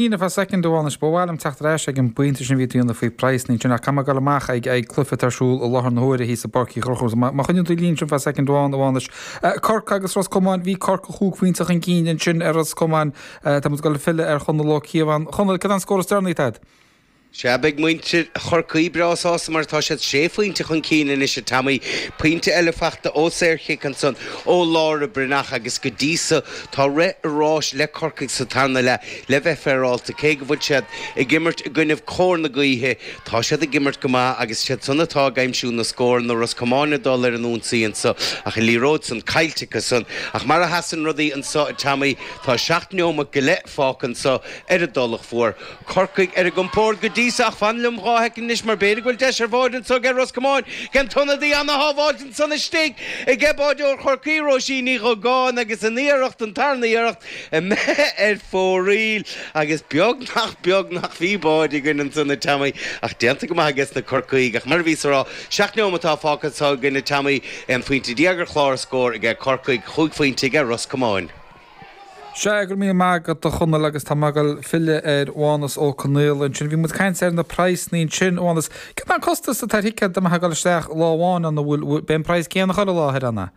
Ní fá soicind a Mhánuis, ba mhaith liom teacht ar ais ag an bpointe sin a bhí tú dhéanamh faoi praghsannaí ansin ach tá mé ag dul amach ag ag cluife atá ar siúl i láthair na huaire thíos i bPáirc Uí Chonchúir. Má choinníonn tú linn ansin fá soicind amháin, a Mhánuis, Corcaigh agus Ros Comáin, bhí Corcaigh chúig phointe chun cinn ansin ar Ros Comáin. Tá muid ag dul filleadh ar Chonall Ó Cíobháin. Chonall, cad é an scór is deireanaí atá agat? Sea, beidh muintir Chorcaí breá sásta mar tá siad sé phointe chun cinn anois, a Tommy. Pointe eile faighte ó saorchic ansan ó Laura Breathnach agus go dtí so tá rith an ráis le Corcaigh sa tarna leath le bheith féaráilte. Cé go bhfuil siad ag imirt i gcoinnibh cóir na gaoithe tá siad ag imirt go maith agus siad san atá ag aimsiú na scóranna, Ros Comáin ag dul ar an ionsaí anso ach an liathróid san caillte acu san. Ach mar a sheasann rudaí anso, a Tommy, tá seacht neomat go leith fágtha anso ar an dTulach Mhór. Corcaigh ar a gcompórd go dtí so, ach fan liom dhá shoicind anois, mar b'fhéidir go bhfuil deis ar bhád anso aige Ros Comáin, cén t-ionad a dhein an-shábháilt ansan istigh aige báideoir Chorcaí, Róisín Ní Dhugáin, agus an iarracht, an tarna iarracht, imithe ar fóraoil, agus beag nach beag nach bhí bád againn ansan, a Teaimí, ach déanta go maith ages na Corcaígh, ach mar a bhíos a rá, seacht neomataí fágtha anso againn, a Teaimí, aon phointe déag ar chlár a scór aige Corcaigh, chúig phointe aige Ros Comáin. Sea, go raibh míle maith agat a Chonaill agus tá mé ag dul filleadh ar Mhánus Ó Conghaile ansin. Bhí muid ag caint ar na praghsannaí ansin. A Mhánuis, céard é an costas atá ar thicéad do bheith ag dul isteach lá amháin ann, an bhfuil, bhfuil, beidh an praghas céanna chuile lá thoir ann, ehm?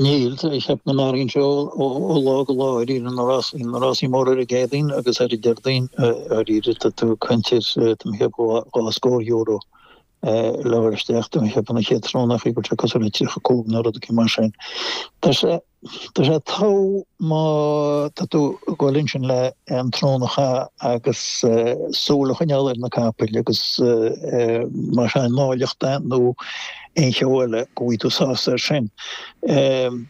Níl, tá mé a cheapadh go n-athraíonn sé ó, ó, ó lá go lá, dháiríre na rásaí móra ar an gCéadaoin agus ar an Déardaoin, dháiríre tá tú ag caint ar, tá mé a cheapadh, dhá scór euro. le dhul isteach don chéad don chéad tráthnóna b'fhéidir cosúil le 35 nó rud eicínt mar sin. Tá sé tá sé togha má tá tú ag gabháil ansin le an tráthnóna a chaitheamh agus súil a choinneáil ar na capaill agus má tá an áilleacht ann nó aon cheo eile go bhfuil tú sásta air sin.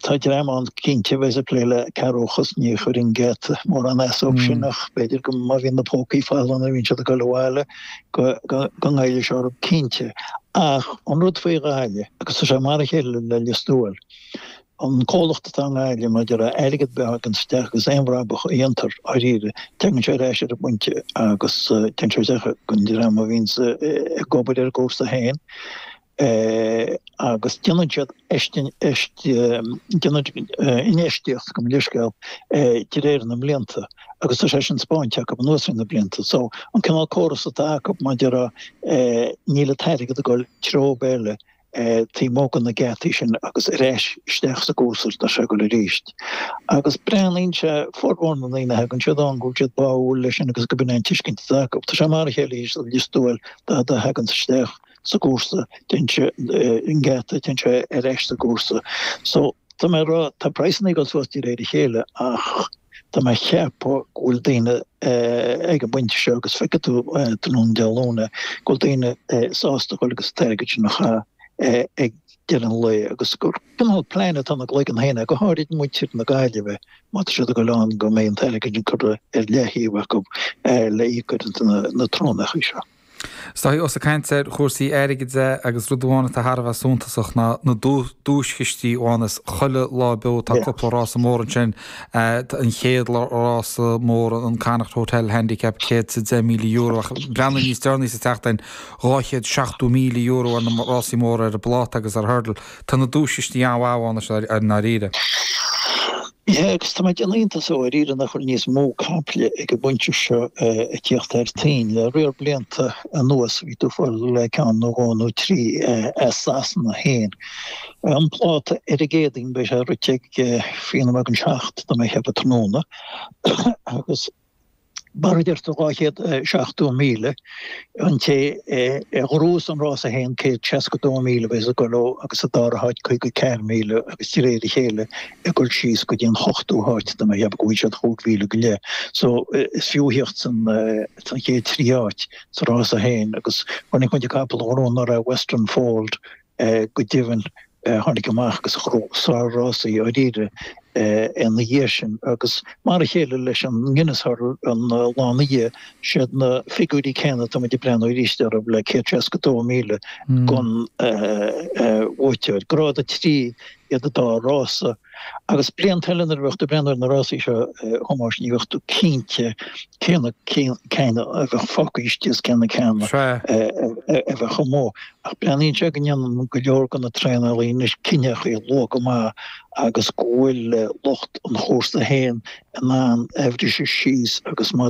Tá dream ann cinnte a bheas ag plé le cearrbhachas ní chuireann an geata mórán as dóibh sin ach b'fhéidir go má bhíonn na pócaí folamh nuair a bhíonn siad ag dul abhaile go ngoillfidh sé orthu, cinnte. Ach an rud faoi Ghaillimh, agus tá sé mar a chéile le Lios Tuathail, an comhlacht atá i nGaillimh, maidir le airgead ar bith a thagann isteach agus aon bhrabach a dhéantar, dháiríre, tagann sé ar ais ar an bpointe agus téann sé isteach don dream a bhíonns ag obair ar an gcúrsa féin. é agus déanann siad infheistíocht gabh mo leithscéal de réir na mblianta agus tá sé sin spáinte acu anuas ar na blianta. So an cineál córas atá acu maidir le níl an t-airgead ag dul treo ar bith eile taobh amuigh de na geataí sin agus ar ais isteach sa gcúrsa atá sé ag dul arís. Agus breathnaíonn sé, formhór na ndaoine a thagann isteach ann go bhfuil siad báúil leis sin agus go b'in é an tuiscint atá acu. Tá sé mar a chéile arís le Lios Tuathail dá dtaganns isteach. sa gcúrsa, téann sé an geata, téann sé ar ais sa gcúrsa. So, tá mé a' rá, tá praghsanna ag dul suas de réir a chéile ach tá mé a' cheapadh go bhfuil daoine ag an bpointe seo agus feicfidh tú tráthnóna Dé Luain é, go bhfuil daoine sásta dhul agus an t-airgead sin a chaitheamh ag deireadh an lae agus gur cineál plean atá ina gcloigeann féin acu, go háirid muintir na Gaillimhe má tá siad ag dul ann go mbeidh an t-airgead sin curtha ar leathtaobh acu le íoc ar na tráthnónaí seo. Is a Dháithí ós ag caint ar chúrsaí airgid duit agus rud amháin atá thar a bheith suntasach ná na duaischistí a bhíonns chuile lá beo tá cúpla rása mór ansin tá an chéad rása mór an Connacht Hotel Handicap céad is a deich míle euro ach breathnaigh níos deireanaí sa tseachtain dhá chéad seachtó míle euro ar na rásaí móra ar an bpláta agus ar an hurdle Tá na duaischistí an-mhaith ann i ndáiríre. Yeah, agus tá mé ag déanamh iontais dháiríre nach bhfuil níos mó caiple ag an bpointe seo ag tíocht thar toinn. Le riar blianta anuas bhí tú ag fáil le ceann nó dhó nó trí as Sasana féin. An pláta ar an gCéadaoin beidh sé rite ag fiche nóiméad don seacht tá mé a' cheapadh tráthnóna agus. Mar a deir tú, 270,000 an té a ghnóthós an rása féin 162,000 a bheidh ag dul dó agus sa dara háit 54,000 agus de réir a chéile ag dul síos go dtí an hochtú háit tá mé a' cheapadh go bhfaighidh siad chúig mhíle go leith so is fiú thíocht san chéad trí áit sa rása féin agus chonaic muid an capall a ghnóthaigh anuraidh Western Fold Go deimhin, tháinig amach agus bhuaigh sár-rásaí dháiríre ina dhiaidh sin agus mar a chéile leis an nGuinness Hurdle an lá ina dhiaidh, siad na figiúirí céanna, tá muid ag breathnú arís orthu le 162,000 don bhuaiteoir, grád 3 iad an dá rása agus blianta eile nuair a bheadh tú ag breathnú ar na rásaí seo a Thomáis ní bheadh tú cinnte cé na cinn a bheadh fágtha istigh is cé na cinn a bheadh amuigh. Ach breathnaíonn sé go ndéanann go leor de na traenálaí anois cinneadh luath go maith agus go bhfuil lucht an chúrsa féin in ann a bhriseadh síos agus má